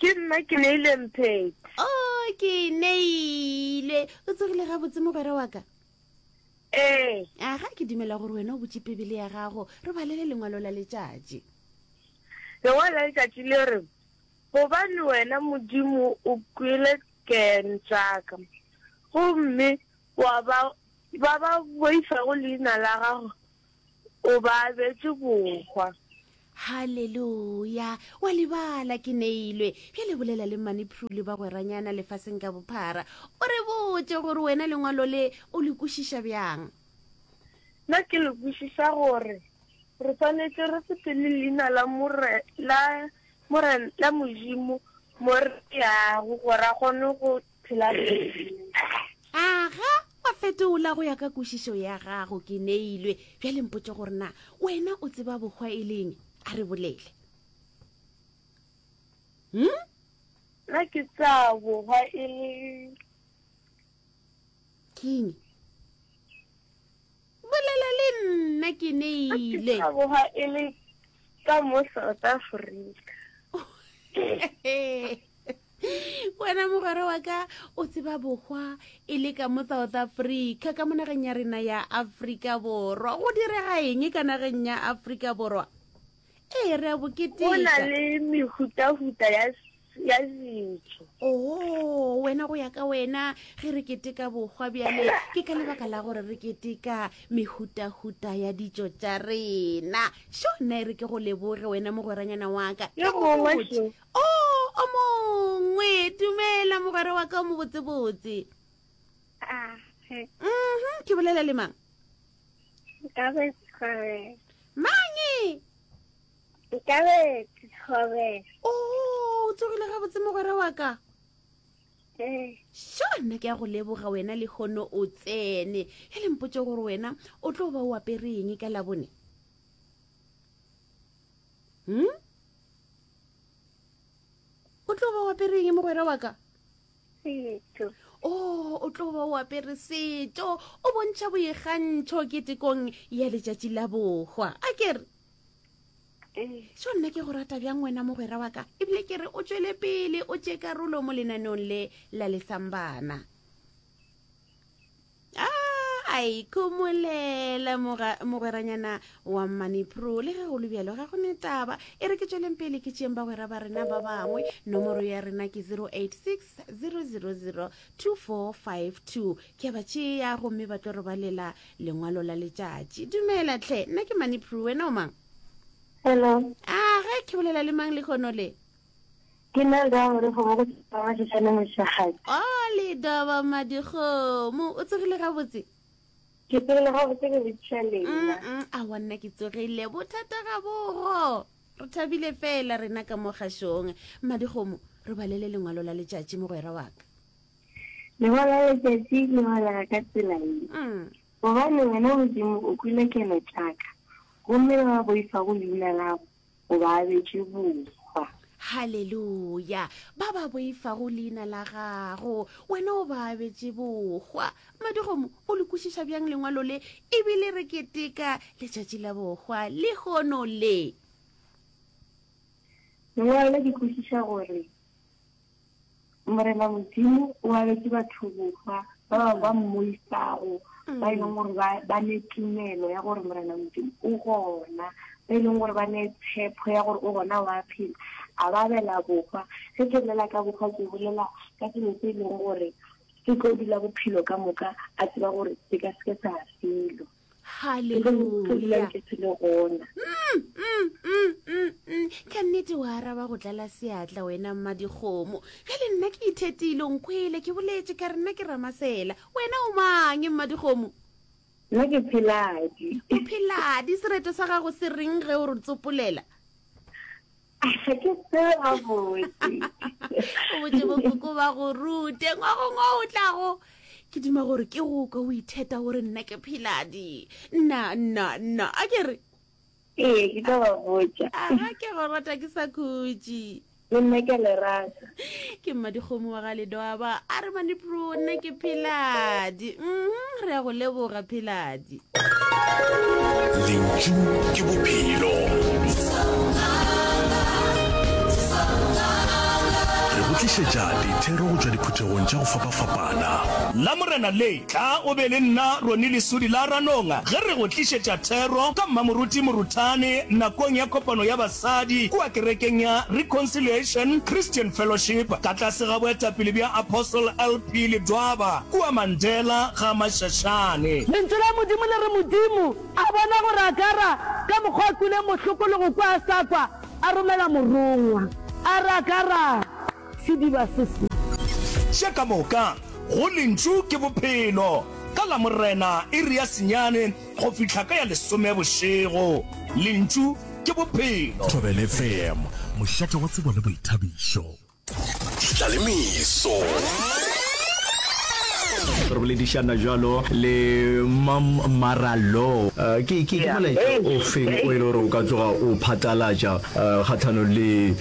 ke nna ke neile mpheti o oh, ke neile o tsogile gabotse mogwera wa ka ee aga ke dumela gore wena o botse pebele ya gago re balele lengwalo la letšatši lengwalo la letšatši le re gobane wena modimo o kwele ken tsaka gomme wa ba ba ba boifago leina la gago O ba abetše bohwa. Haleluya! Wa lebala, ke neilwe. Bjale bolela le Mani Prue le bagweranyana lefaseng ka bophara. O re botše gore wena lengwalo le o le kwešiša bjang. Na ke le kwešiša gore re swanetše re sepele leina la More, la More, la Modimo mo re yago gore a kgone go phela A ga wa fetola go ya ka kwešišo ya gago, ke neilwe. Bjale mpotše gore na wena o tseba bohwa e leng? A re bolele. Hm? Na ke tsa bohwa e le. Keng? Bolela le nna ke neile. Ka boga e le ka mo South Africa. Wena mogwera wa ka o tseba bohwa e le ka mo South Africa ka mo nageng ya rena ya Afrika Borwa. Go direga eng ka nageng ya Afrika Borwa? Ee, re a bo keteka. Go na le mehutahuta ya ya ditso. Oo, wena go ya ka wena ge re keteka bokgwa bjale ke ka lebaka la gore re keteka mehutahuta ya ditso tša rena. Sho, nna e re ke go leboge wena mogweranyana wa ka. Yo mongwe sho. O, o mongwe. Dumela mogwera wa ka o mobotsebotse. Ah, he. Mhm, ke bolela le mang? Nkabe Kgobere. Mangi! Nkabe Kgobere. O oh, tsogile ga botse mogwera wa ka. Eh. Sho nna ke ya go leboga wena le hono o tsene. E le mpotse gore wena o tlo ba o apere eng ka labone? Hmm? O tlo ba o apere eng mogwera wa ka? setso o oh, o tlo ba o apere setso o bontšha boikgantšho ketekong ya letšatši la bohwa a kere so eh. nna ke go rata bjang wena mogwera wa ka ebile ke re o tswele pele o tše karolo mo lenaneong le la lesambana a ikhomolela mogweranyana wa manipro le ge go lebjalo ga go ne taba e re ke tsweleng pele ke tšeeng bagwera ba rena ba bangwe nomoro ya rena ke 086 000 2452 ke ba tšea gomme ba tlo re ba lela lengwalo la letšatši dumela tlhe nna ke manipro wena o mang hello a ah, ge ke bolela le mang le kgono le Ke nna Lida wa Madikgomo go tswa kwa Mašetšaneng Moshegadi. Oh, Lida wa Madikgomo, o tsogile gabotse? Ke tsogile gabotse ke botšiša lena. Mm, a wa nna ke tsogile, bothata ga bogo. Re thabile fela rena ka mo kgašong. Madikgomo, re balele lengwalo la letšatši mogwera wa ka. Lengwalo la letšatši le balega ka tsela ye. Mm. Gobane wena Modimo o kwile keno tša ka, gomme ba ba boifa go leina lago go ba abetše bohwa. Haleluya! Ba ba boifago leina la gago, wena o ba abetše bohwa. Madigomo, o le kwešiša bjang lengwalo le e bile re keteka letšatši la bohwa lehono le? Lengwalo le ke kwešiša gore Morena Modimo o abetse batho bohwa ba bangwe ba mmoisago ba e leng gore ba ne tumelo ya gore Morena Modimo o gona ba e leng gore ba ne tshepho ya gore o gona wa phela a ba abela bohwa ge ke bolela ka bohwa ke bolela ka selo se e leng gore se tlo dula bophelo ka moka a tseba gore se ka seke sa felo Haleluya! Ka nnete o araba go tlala seatla wena mmadikgomo. Bjale nna ke ithetile, o nkwele, ke boletše ka re nna ke Ramasela. Wena o mang, mmadikgomo? Nna ke Pheladi. O Pheladi, sereto sa gago se reng ge o re tsopolela? ga ke tsebe gabotse o botse bokoko ba go rute ngwagongwa o tlago ke dima gore ke go ka o itheta gore nna ke pheladi nna nna nna a ke re ee ke ka ba botsa aga ke go rata ke sa khutše le nna ke le rata ke mmadikgomo wa ga ledoaba a re manipro nna ke pheladi mm re ya go leboga pheladi lentšu ke bophelo re go tlišetša dithero go tšwa diphuthegong tša go fapafapana la morena le tla o be le nna roni lesodi la ranonga ge re go tlišetša thero ka mmamoruti moruthane nakong ya kopano ya Sadi, kua kerekeng ya Reconciliation Christian Fellowship, ka tlase ga boetapele bja Apostle LP. Ledwaba, kua Mandela ga Mashashane. Lentšu la Modimo le re, Modimo a bona gore Agara ka mokgwa a kwile mohloko le go kwa a sa kwa, a romela morongwa, a re, Agara! Sediba se se. Še ka moka, go Lentšu ke Bophelo. Ka Lamorena, iri ya senyane go fihla ka ya lesome bošego, Lentšu ke Bophelo. Thobela FM, mošate wa tsebo le boithabišo. Tla le meso. Re boledišana jalo le Mam Marallo. Uh, ke ke ke molaetša o feng o e le gore o ka tloga o phatalatša uh, kgathanong le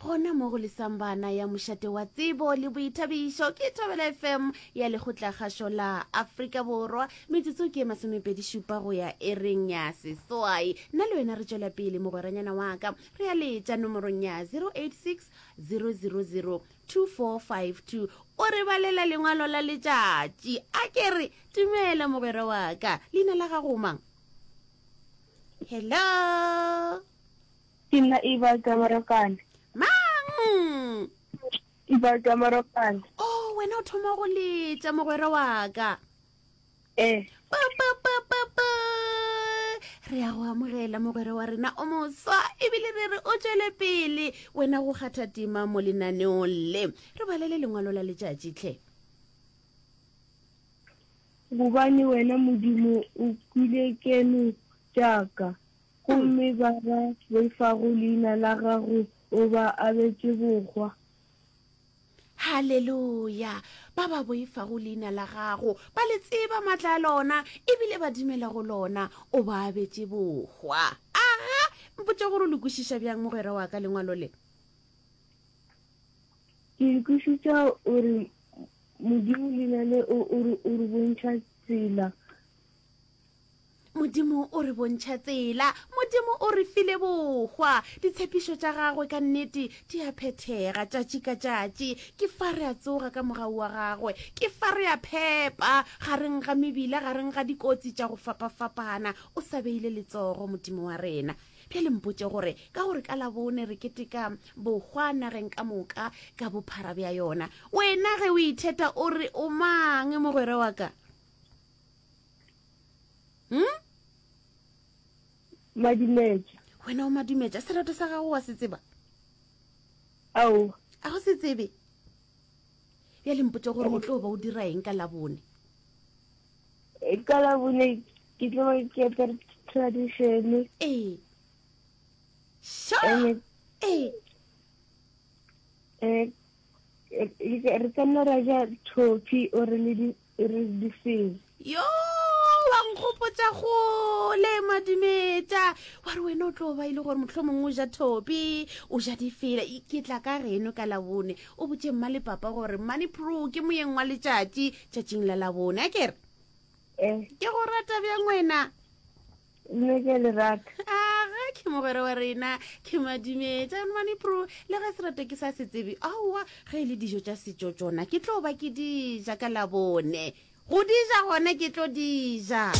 gona mo go lesang bana ya mošate wa tsebo le boithabišo ke thobela fm ya lekgotlakgašo la afrika borwa metsotso ke masomepedišupa go ya e reng ya seswai nna le wena re tšwela pele mogweranyana wa ka re ya letša nomorong ya 086 000 2452 o re balela lengwalo la letšatši a ke re dumela mogwera wa ka leina la gago mang hello Ke nna Ebal Tamarokane. Mang? Ebal Tamarokane. Oh, wena o thoma go letša mogwera wa ka. Eh. Pa pa pa pa pa. Re ya go amogela mogwera wa rena o moswa ebile re re o tšwele pele wena go kgatha tima mo lenaneong le. Re balele lengwalo la letšatši tlhe. Gobane wena Modimo o kwile keno tša ka. Gomme ba ba boifago leina la gago o ba abetše bohwa. Haleluya! Ba ba boifago leina la gago ba le tseba matla a lona e bile ba dumela go lona, o ba abetše bohwa. Aga! Mpotša gore o le kwešiša bjang, mogwera wa ka, lengwalo le? Ke le kwešiša o re, Modimo, leina le o re bontšha tsela. Modimo o re bontšha tsela. Modimo o re file bohwa. Ditshepišo tša gagwe ka nnete di a phethega tšatši ka tšatši. Ke fa re a tsoga ka mogau wa gagwe. Ke fa re a phepa gareng ga mebila, gareng ga dikotsi tša go fapafapana. O sa beile letsogo, Modimo wa rena. Bjale mpotše gore, ka gore ka Labone re keteka bohwa nageng ka moka ka bophara bja yona, wena ge o itheta o re o mang, mogwera wa ka? hmm? madimetša wena o madimetša serato sa gago wa se tseba ao a go se tsebe ya lempotse gore o tlo ba o dira eng ka labone e, ka labone ke tlo ke apere traditione ee sha ee re ka nna ra ja thopi ore le e re di feng yo wa nkgopotsa gole madimetša wa re wena o tlo ba e le gore motlho mongwe o ja thopi o ja difela ke tla ka geno ka labone o botse mma le papa gore mmane pro ke moyeng wa letšatši tšatšing la labone a kere eh. ke go rata bjang wena le ke le rata aga ke mogwera wa rena ke madimetša mane pro le ge serato ke sa se tsebe aowa ge e le dijo tša setšo tsona ke tlo ba ke dija ka labone go dija gone ke tlo dija